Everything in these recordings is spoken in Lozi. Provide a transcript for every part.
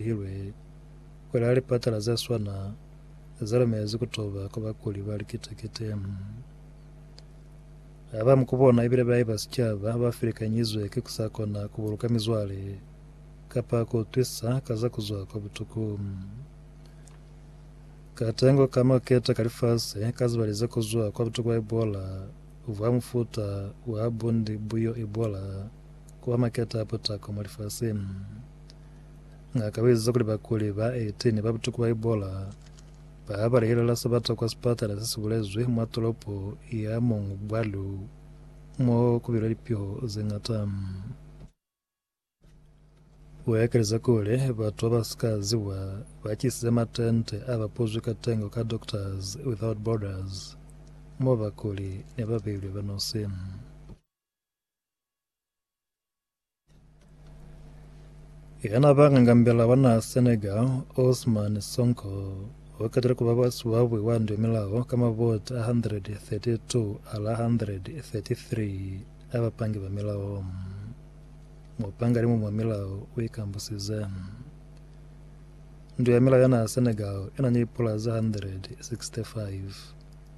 Lihilwe kuli ha lipatala ze swana ze lumelezi ku toba ku bakuli ba likite-kite ha ba mu ku bona ibile ba iba sicaba ha ba filikanyizwe ki ku sa kona ku buluka mizwale kapa ku utwisa ka za ku zwa kwa butuku. Katengo ka maketa ka lifasi ka zibali ze ku zwa kwa butuku bwa Ebola bwa mufuta wa bundi bu yo Ebola ku ba maketa a potako mwa lifasi. Ngaka u eziza kuli bakuli ba 18 ba butuku ba Ebola ba balehelela sabata kwa sipatala se si bulezwi mwa tolopo ya Mongwalu mo ku bilwe lipiho ze ñata. U ekeleza kuli, Batu ba ba si ka ziwa ba tisize matente a ba puzwi ka tengo ka Doctors Without Borders mo bakuli ne ba beilwe ba nosi. Yana ba ngangambela wa naha Senegal, Ousmane Sonko, o qetile ku ba basuabu wa ndumelao ka mavoti a 132 ala 133 a bapangi ba milao. Mupanga-limu mwa milao u ikambusize. Ndu ya milao ya naha Senegal i na ni pula ze 165.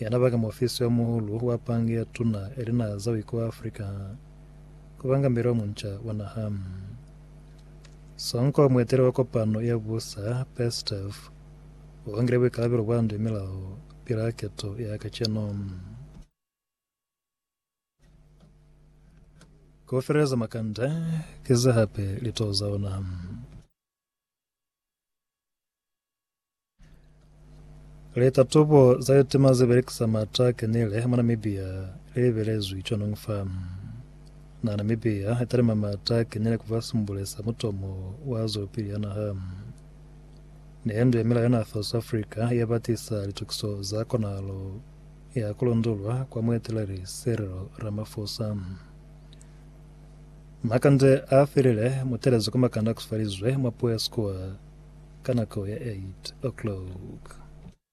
Yana baka muofisi wa muulu wa pangi ya tuna ya linaha za Wiko wa Afrika ku banga mbeli wa munca wa naha. Songo wa mueteli wa kopano ya busa, Peskov, u bangile buikalabelo bwa nde milaho pili ha keto ya kacenu. Ku feleleza makanda ki ze hape litoho za ona. Litatubo za litima ze belekisa mata a kenile mwa Namibia li lebelezwi cwanong fa naha. Namibia i talima mata a kenile ku fa simbule sa mutomo wa zwelopili ya naha. Meendo ya milao ya naha fa South Africa ya ba tisa litukiso za konahalo ya ku londolwa kwa mueteleli Cyril Ramaphosa. Makande a felile mutelezo ka makande a kusifalizwe mwa puo ya Squaw ka nako ya 8:00.